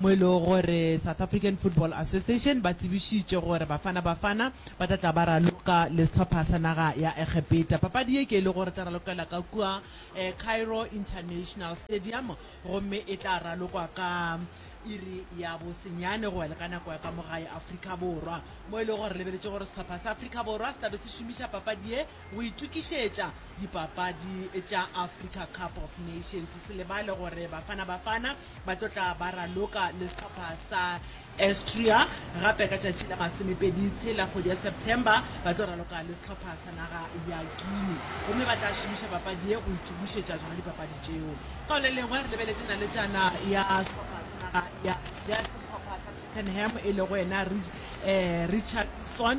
mo e lego gore South African Football Association ba tsebišitše gore Bafana Bafana ba tla tla ba raloka le sehlopha sa naga ya Egepeta. Papadi ye ke e lego gore e tla ralokela ka kua Cairo International Stadium gomme e tla ralokwa ka iri ya bosenyane go ya le ka nako ya ka mo gae Afrika Borwa, mo e lego gore re lebeletše gore sehlopha sa Afrika Borwa se tla be se šomiša papadi ye Go itokišetša dipapadi tša Africa Cup of Nations, se lebale gore Bafana Bafana ba tlo tla ba raloka le sehlopha sa Austria, gape ka tšatši la masomepedi tshela kgwedi ya September ba tlo raloka le sehlopha sa naga ya Guinea gomme ba tla šomiša papadi ye go itokišetša tšona dipapadi tšeo. Ka go le lengwe, re lebeletše naletšana ya sehlopha sa naga ya ya sehlopha sa Tottenham e lego yena Richarlison.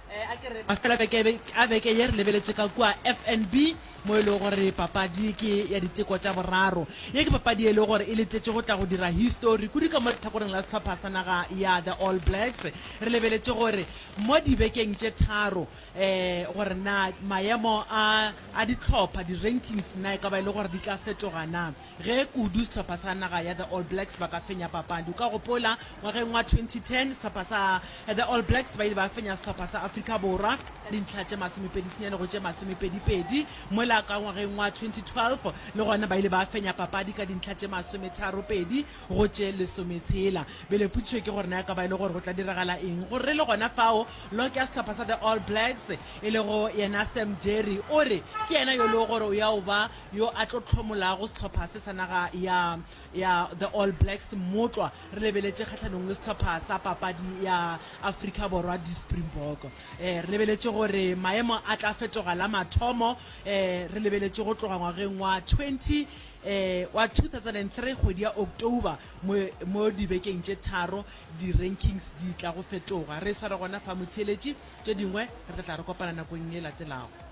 A fela beke a beke ye re lebeletše ka kua FNB mo e lego gore papadi ke ya diteko tša boraro. Ye ke papadi ye e lego gore e letetše go tla go dira histori kudu ka mo lehlakoreng la sehlopha sa naga ya The All Blacks. Re lebeletše gore mo dibekeng tše tharo gore na maemo a a dihlopha, di-rankings, na e ka ba e le gore di tla fetoga na. Ge kudu sehlopha sa naga ya The All Blacks ba ka fenya papadi. O ka gopola ngwageng wa 2010 sehlopha sa The All Blacks ba ile ba fenya sehlopha sa Afrika Borwa ka dintlha tše masomepedi senyane go tše masomepedi pedi. Mola ka ngwageng wa 2012 le gona ba ile ba fenya papadi ka dintlha tše masometharo pedi go tše lesometshela. Bjale potšišo ke gore na e ka ba e le gore go tla diragala eng go re le gona fao. Lok ya sehlopha sa The All Blacks e lego yena Sam Jerry o re ke yena yo e lego gore o ya o ba yo a tlo hlomolago sehlopha se sa naga ya ya the All Blacks motlwa re lebeletše kgahlanong le sehlopha sa papadi ya Afrika Borwa di Springbok eh re lebeletše gore maemo a tla fetoga la mathomo eh re lebeletše go tloga ngwageng wa 20 eh wa 2003 kgwedi ya October mo mo dibekeng tše tharo di rankings di tla go fetoga re sware gona fa motheeletši tše dingwe re tla re kopana nakong e latelago